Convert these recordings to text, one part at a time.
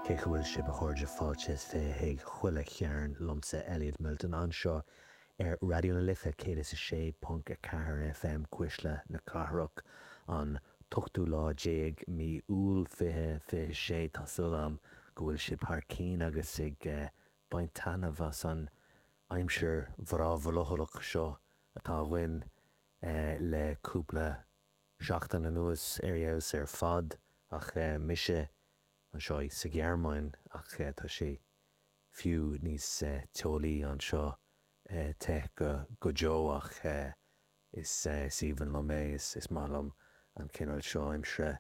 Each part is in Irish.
Cén chaoi a bhfuil sib, a chairde, fáilte is fiche chuig chuile chearn liomsa, Elliot Milton, anseo ar Raidió na Life 106.4 FM, Cuisle na Cathrach, an t-ochtú lá déag mí Iúil fiche fiche sé, tá súil agam go bhfuil sib thar cinn agus ag baint taithneamh as an aimsir bhreá bhrothallach seo atá againn le cúpla seachtain anuas ar fheabhas ar fad ach mise anseo sa Ghearmáin ach tá sé fiú níos teolaí anseo, te go deo ach is aoibhinn liom é, is maith liom an cineál seo aimsire.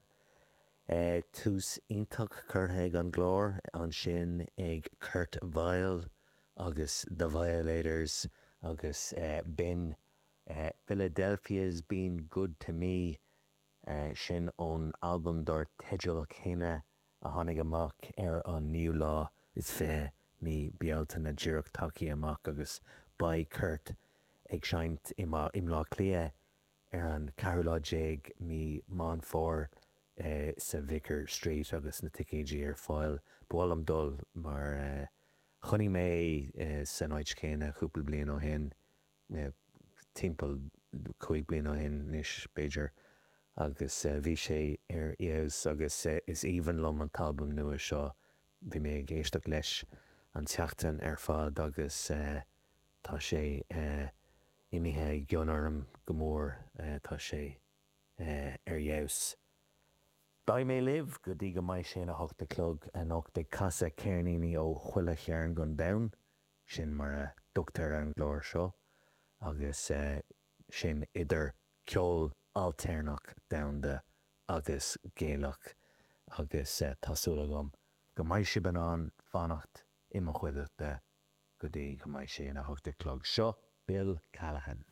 Tús iontach curtha ag an gclár ansin ag Kurt Vile agus The Violators agus b'in Philadelphia's Been Good to Me, sin ón albam dár teideal céanna a tháinig amach ar an naoú lá is fiche mí Bealtaine díreach tagthaí amach agus beidh Kurt ag seinnt i mBaile Átha Cliath ar an ceathrú lá déag mí Meán Fómhair sa Vicar Street agus na ticéidí ar fáil. Ba mhaith liom dul mar chonaic mé san áit chéanna cúpla bliain ó shin. mé timpeall cúig bliana ó shin anois, b'fhéidir, agus bhí sé ar fheabhas agus is aoibhinn liom an t-albam nua seo. Bhí mé ag éisteacht leis an tseachtain ar fad agus tá sé imithe i gcion orm go mór, tá sé ar fheabhas. Beidh mé libh go dtí go mbeidh sé ina 8 a chlog anocht ag casadh ceirníní ó chuile chearn den domhan. Sin mar a thugtar ar an gclár seo agus sin idir ceol ailtéarnach domhanda agus Gaelach agus tá súil agam go mbeidh sibh in ann fanacht i mo chuideachta go dtí go mbeidh sé ina hocht a chlog. Seo Bill Callahan.